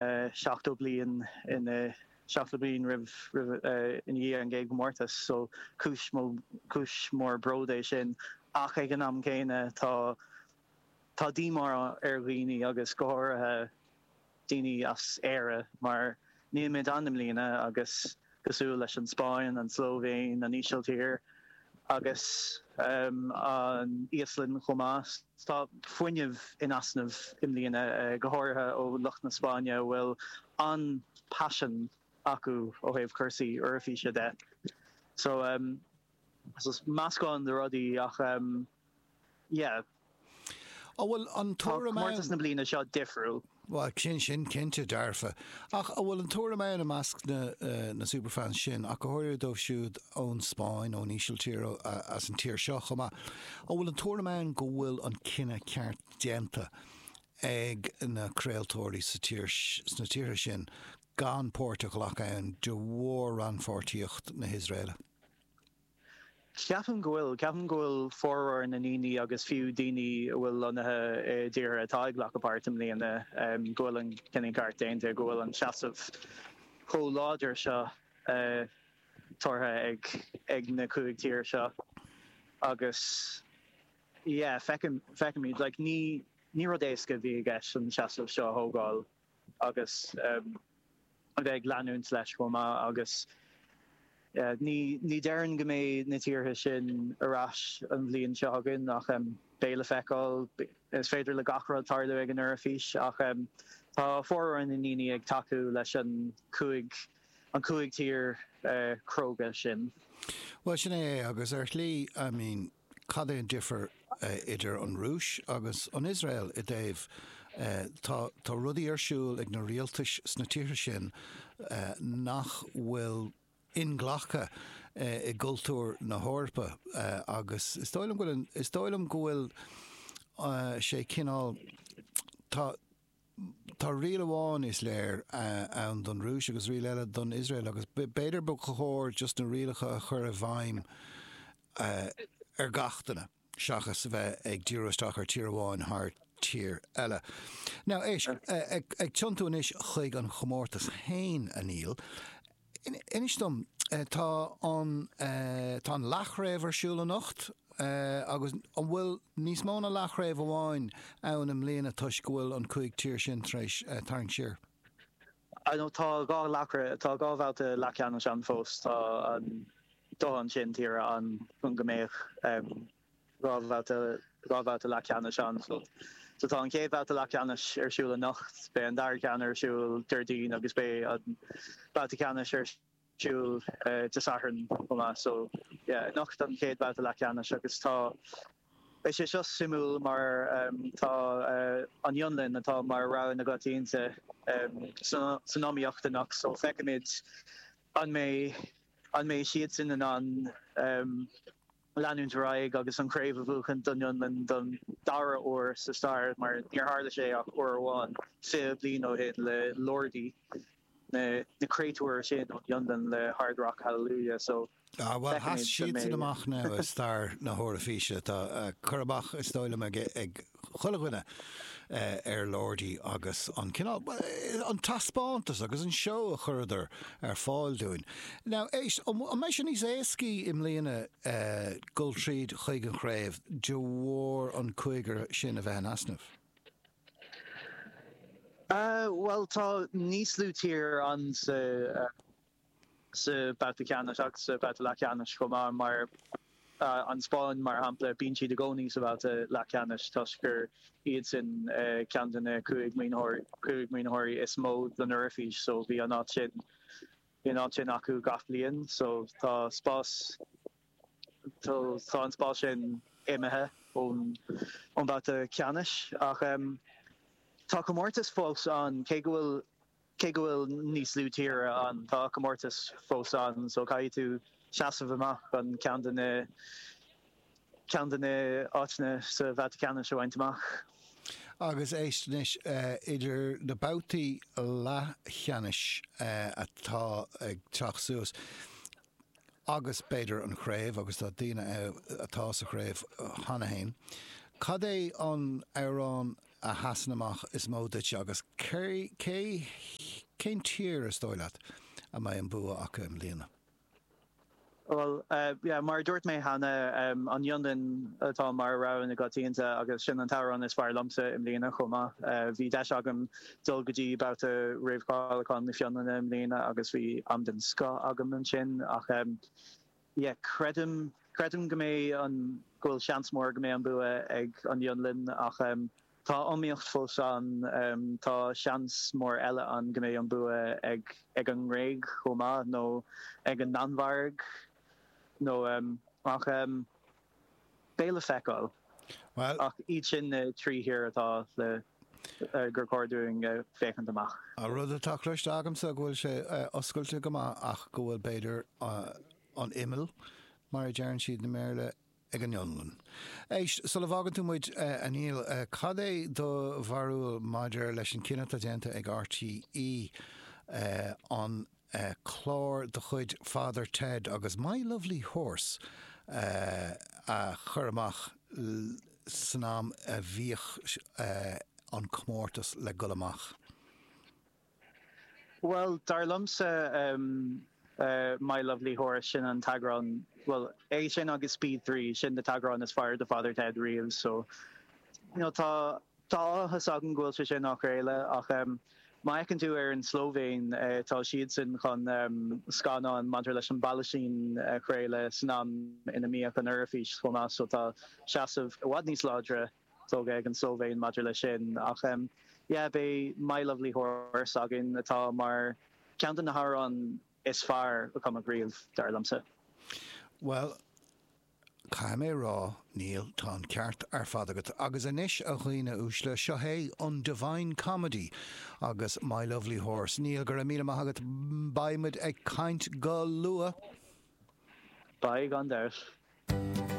70 bliain anois 70 bliain i ndiaidh an gcéad gcomórtas so cúis mó cúis mór bród é sin ach ag an am céanna tá tá díomá ar dhaoine agus go háirithe daoine as Éire mar níl muid ann i mbliana agus cosúil leis an Spáinn, an tSlóivéin, an Ísiltír agus an Íoslainn chomh maith. Tá fuinneamh in easnamh i mbliana, go háirithe ó lucht na Spáinne a bhfuil an-paisean acu ó thaobh cúrsaí Eoraifíse de. Is meascán de rudaí ach yeah. An bhfuil an tuairim ann. Tá comórtas na bliana seo difriúil. Bhuel, sin sin cinnte dearfa. Ach an bhfuil an tuairim ann i measc na superfans sin, ach go háirithe dóibh siúd ón Spáinn, ón Ísiltír, as an tír seo chomh maith, an bhfuil an tuairim ann go bhfuil an cinneadh ceart déanta ag na craoltóirí sna tíortha sin gan páirt a ghlacadh ann de bharr rannpháirtíocht na hIosraele? Ceapaim go bhfuil. Ceapaim go bhfuil formhór na ndaoine agus fiú daoine a bhfuil lonnaithe i dtíortha atá ag glacadh páirt i mbliana, go bhfuil an cinneadh ceart déanta, go bhfuil an seasamh chomh láidir seo tabhartha ag na cúig tír seo agus yeah fei, feicimid like ní rud éasca a bhí i gceist an seasamh seo a thógáil. agus a bheith ag leanúint leis chomh maith agus ní déarfainn go mbeidh na tíortha sin ar ais an bhliain seo chugainn ach beidh le feiceáil, is féidir le gach rud tarlú ag an Eoraifís ach tá formhór na ndaoine ag tacú leis an cúig, an cúig tír cróga sin. Bhuel, sin é é agus ar shlí, I mean. Cad é an difear idir an Rúis agus an Iosrael i dtaobh, tá, tá rudaí ar siúl ag na rialtais sna tíortha sin nach bhfuil inghlactha i gcultúr na hEorpa agus is dóigh liom go bhfuil, is dóigh liom go bhfuil sé cineál, tá, Tá riail amháin, is léir, ann don Rúis agus riail eile don Iosrael agus b'fhéidir ba chóir just na rialacha a chur i bhfeidhm ar gach duine seachas a bheith ag díriú isteach ar tír amháin thar tír eile. Now, éist, ag tiontú anois chuig an chomórtas féin, a Neil, Inis dom, tá an tá an leathchraobh ar siúl anocht agus an bhfuil níos mó na leathchraobh amháin ann i mbliana toisc go bhfuil an cúig tír sin tar éis tarraingt siar? Ar ndóigh tá dhá leathchraobh, tá dhá bhabhta leathcheannais ann fós, tá an dóthain sin tíre ann chun go mbeadh dhá bhabhta leathcheannais ann. So tá an chéad bhabhta leathcheannais ar siúl anocht, beidh an dara ceann ar siúl Déardaoin agus beidh an babhta ceannais ar siúl Dé Sathairn chomh maith. So yeah, anocht an chéad bhabhta leathcheannais agus tá, beidh sé seo suimiúil mar tá an Fhionlainn atá mar rogha na gcoitianta san iomaíocht anocht so feicfimid an mbeidh, an mbeidh siadsan in ann. leanúint ar aghaidh agus an chraobh a bhuachaint don Fhionlainn don dara huair sa stair mar níor tharla sé ach uair amháin fiche bliain ó shin le Lordi, na créatúir sin ón Fhionlainn le Hard Rock Hallelujah so Ah, bhuel, sheas siadsan amach now i stair na hEoraifíse. Tá cur amach, is dóigh liom, ag. chuile dhuine ar Lordi agus an cineál, an taispeántas agus an seó a chuireadar ar fáil dúinn. Now, éist, an mbeidh sé níos éascaí i mbliana dul tríd chuig an chraobh de bharr an cúigear sin a bheith in easnamh? Bhuel, tá níos lú tír ann sa. sa bhabhta ceannais ach sa bhabhta leathcheannais chomh maith, mar an Spáinn mar shampla, bíonn siad i gcónaí sa bhabhta leathcheannais toisc gur iadsan ceann de na cúig maoin, cúig maoinitheoirí is mó don Eoraifís so bhí an áit sin, bhí an áit sin acu gach bliain so tá spás, tá an spás sin imithe ón mbabhta ceannais ach tá comórtas fós ann cé go bhfuil Cé go bhfuil níos lú tír ann, tá comórtas fós ann so caithfidh tú seasamh amach chun ceann de na ceann de na áiteanna sa bhabhta ceannais a bhaint amach. Agus éist anois, idir na babhtaí leathcheannais atá ag teacht suas agus b'fhéidir an chraobh, agus tá daoine ann atá sa chraobh cheana fhéin, cad é an t-amhrán a sheasann amach is mó duit agus cé, cén tír is dóigh leat a mbeidh an bua acu i mbliana? Bhuel, yeah, mar a dúirt mé cheana, an Fhionlainn atá mar rogha na gcoitianta agus sin an t-amhrán is fearr liomsa i mbliana chomh maith. Bhí deis agam dul go dtí babhta Réamhcháiliúcháin na Fionlainne i mbliana agus bhí am den scoth agam ansin ach Yeah, creidim, creidim go mbeidh an, go bhfuil seans mór go mbeidh an bua ag an Fhionlainn ach em tá iomaíocht fós ann, em tá seans mór eile ann go mbeidh an bua ag, ag an nGréig chomh maith nó ag an Danmhairg nó em ach em Béal a feiceáil. Bhuel. Ach iad sin na trí thír atá le, gur chóir dúinn féachaint amach. An rud atá cloiste agamsa go bhfuil sé oscailte go maith ach go bhfuil, b'fhéidir, an imeall, mar a deireann siad i mBéarla, ag an Fhionlainn. Éist, sula bhfágann tú muid, a Neil, cad é do bharúil maidir leis an cinneadh atá déanta ag RTÉ an clár de chuid Father Ted agus My Lovely Horse a chur amach san am a bhíodh an comórtas le dhul amach? Bhuel, dar liomsa, My Lovely Horse, sin an t-eagrán, bhuel, é sin agus Speed Three, sin na t-eagráin is fearr de Father Ted riamh so, you know, tá, Tá áthas orm go bhfuil sé sin á chraoladh ach má fheiceann tú ar an tSlóivéin, tá siadsan chun scannán maidir leis an bPalaistín a chraoladh san am ina mbíodh an Eoraifís chomh maith so tá seasamh i bhfad níos láidre tógtha ag an tSlóivéin maidir leis sin ach yeah beidh My Lovely Horse againn atá mar ceann de na hamhráin is fearr a cumadh riamh dar liomsa. Bhuel Caithfidh mé a rá, Neil, tá an ceart ar fad agat. Agus anois, a dhaoine uaisle, seo é an Divine Comedy agus My Lovely Horse. Neil, go raibh míle maith agat. Beidh muid ag caint go luath! Beidh, gan dabht.